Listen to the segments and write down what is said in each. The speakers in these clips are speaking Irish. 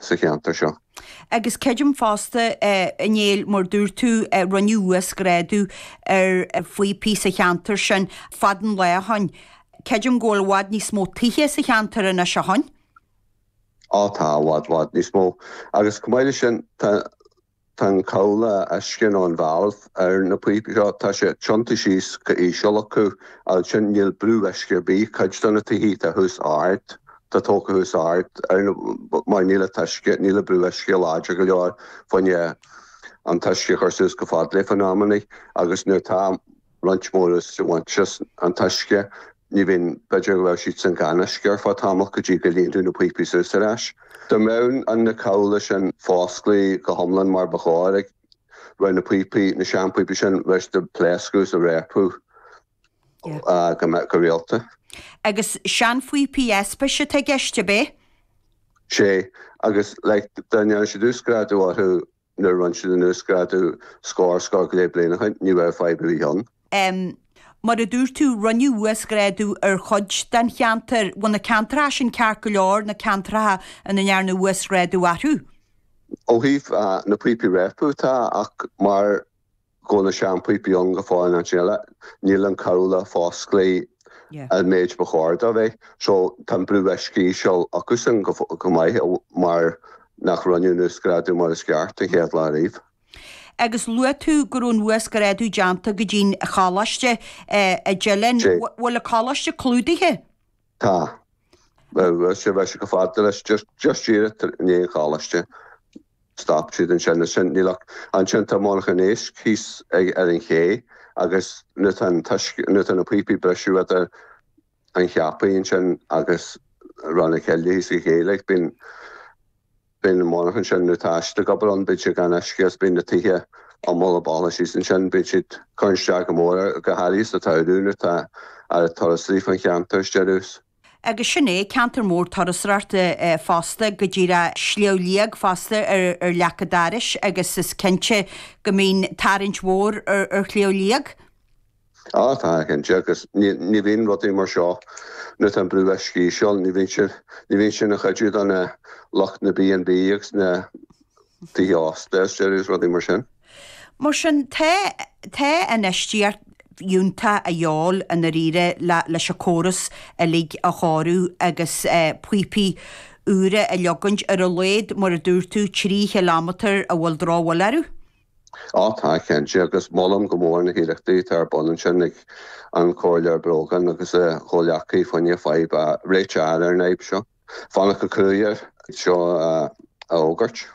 sa cheantar seo. Agus creidim fosta, Néill, mar dúirt tú, rinneadh uasghrádu ar phíopaí sa cheantar sin fada an lá ó shin. Creidim go bhfuil i bhfad níos mó tithe sa cheantar anois ó shin. Á tá, i bhfad, bhfad níos mó. Agus chomh maith leis sin, tá Tá an chomhla uisce nó an valve ar na píopaí seo, tá sé tiontaithe síos go íseal acu, agus sin níl brú uisce ar bith, cuid de na tithe atá thuas ard, atá tógtha thuas ard, ar na, mar níl an t-uisce, níl an brú uisce láidir go leor fá choinne an t-uisce a chur suas go fad leo in amannaí agus nuair tá, roinnt mór ag úsáid an t-uisce, ní bhíonn, b'fhéidir go raibh siadsan gan uisce ar feadh tamall go dtí go líonfadh na píopaí suas ar ais. Dá mbeadh an na comhlaí sin fosclaithe go hiomlán mar ba chóir ag, raibh na píopaí, na seanphíopaí sin bheadh siad ag pléascadh is ag réabadh go, go rialta. Agus seanphíopaí aispeist atá i gceist, ab é? Sé, agus like dá ndéanfadh siad uasghrádú orthu, Nuair a rinneadh an uasghrádú scór scór go leith bliain ó shin, ní bheadh fadhb ar bith ann. M, Mar a dúirt tú, rinneadh uasghrádú ar chuid den cheantar. Bhfuil na ceantracha sin ceart go leor, na ceantracha ina ndearnadh uasghrádú orthu? Ó thaobh na bpíopaí ag réabadh, tá, ach mar Go na sean-píopaí ann go fóill in áit eile. Níl an comhla fosclaithe an méid ba chóir do a bheith. So, tá an brú uisce íseal acusan chomh maith mar nach rinneadh an uasghrádú mar is ceart an chéad lá ariamh. Agus luaigh tú go raibh an uasghrádú déanta go dtí'n Choláiste, i dTeileann. Bhfuil an Coláiste clúdaithe? Tá. Bheadh sé bheadh sé go fada leis just just díreach ar in aon choláiste. Stop siad ansin is sin níl ach ansin tá Monarcha an Éisc thíos ag ar an ché agus nuair tá an t-uisce nuair tá na píopaí ag briseadh fá dtaobh den Cheapaigh ansin agus Rann na Cille thíos ag an ché bíonn Bíonn na monarchan sin nó atá istigh ag obair ann, bíonn siad gan uisce agus bíonn na tithe umhal i bhfalla síos ansin. Bíonn siad ag cur isteach go mór ar go háirithe sa tsamhradh nuair atá lear turasóirí faoin cheantar, is deireadh is. Agus sin é, ceantar mór turasóireacht fosta, go díreach Sliabh Liag fosta ar leac an dorais agus is cinnte go mbíonn tarraingt mhór ar Shliabh Liag. Tá, tá, cinnte, agus ní bhíonn rudaí mar seo, nuair atá an brú uisce íseal, ní bhíonn sé, ní bhíonn sé ina chuidiú do na, lucht na B&B agus na tithe ósta is deireadh is rudaí mar sin. Mar sin, tá, tá infheistíocht fhiúntach de dhíobháil i ndáiríre le, leis an córas uilig a chóiriú agus píopaí úra a leagaint ar a laghad, mar a dúirt tú, trí chiliméadar a bhfuil drochbhail orthu. Á, tá, cinnte, agus molaim go mór na hiarrachtaí atá ar bun ansin ag an Chomhairleoir Brogan agus a chomhleacaí fá choinne fadhb a réiteach ar an fhadhb seo. Bheadh sé cruaidh air seo a fhógairt.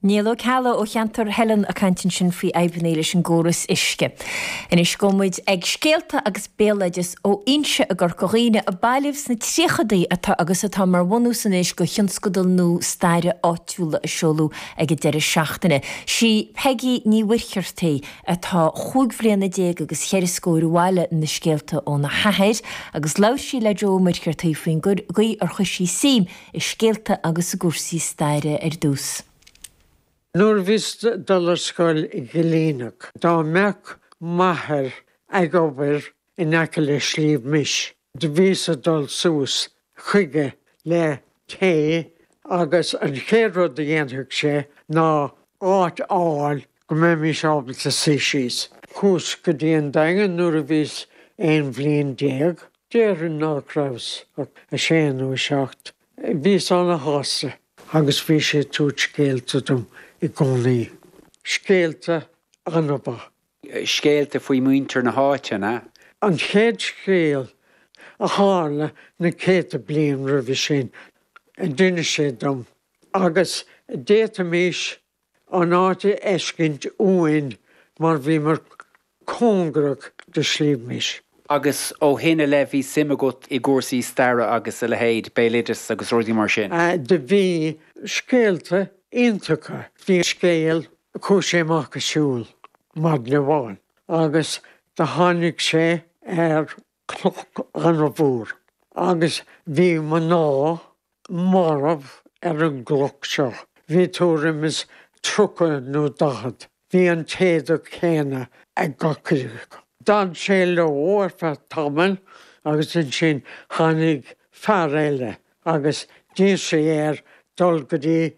Niall Ó Ceallaigh ó cheantar Theilinn ag caint ansin faoi fhadhbanna leis an gcóras uisce. Anois gabhfaidh muid ag scéalta agus béaloideas ón Inse i gCorca Dhuibhne a bailíodh sna tríochadaí atá agus atá mar bhunús anois do thionscadal nua staire áitiúla a seoladh Ag an deireadh seachtaine, sí Peigí Ní Mhuircheartaigh, atá cúig bliana déag agus cheithre scóir a bhailigh na scéalta óna hathair agus labhair sí le Joe Ó Muircheartaigh faoin gcaoi ar chuir sí suim i scéalta agus i gcúrsaí staire ar dtús. Nuair bhíos ag dul ar scoil i gCillineach, do bhíodh m'athair ag obair in aice le Sliabh Mis. Do bhíos ag dul suas chuige le tae agus an chéad rud a dhéanfadh sé ná áit a fháil go mbeimis ábalta suí síos. Chuas go dtí an Daingean nuair a bhíos aon bhliain déag, déarfainn nach rabhas ach a sé nó a seacht. Bhíos ana-shásta agus bhí sé ag tabhairt scéalta dom i gcónaí. Scéalta ana-mhaith. scéalta faoi mhuintir na háiteanna. An chéad scéal, a tharla na céadta bliain roimhe sin, a d'inis sé dom, agus d'fhéadfaimis an áit a fheiscint uainn mar bhíomar cóngarach do Shliabh Mis. Agus ó shin i leith bhí suim agat i gcúrsaí staire agus a leithéid, béaloideas agus rudaí mar sin? Do bhí. Scéalta iontacha. Bhí scéal chuaigh sé amach ag siúl maidin amháin agus do tháinig sé ar chloch ana-mhór agus bhí mná marbh ar an gcloch seo. Bhí tuairim is tríocha nó daichead. Bhí an t-éadach céanna ag gach acu. D'fhan sé leo ar feadh tamaill agus ansin tháinig fear eile agus d'iarr sé air dul go dtí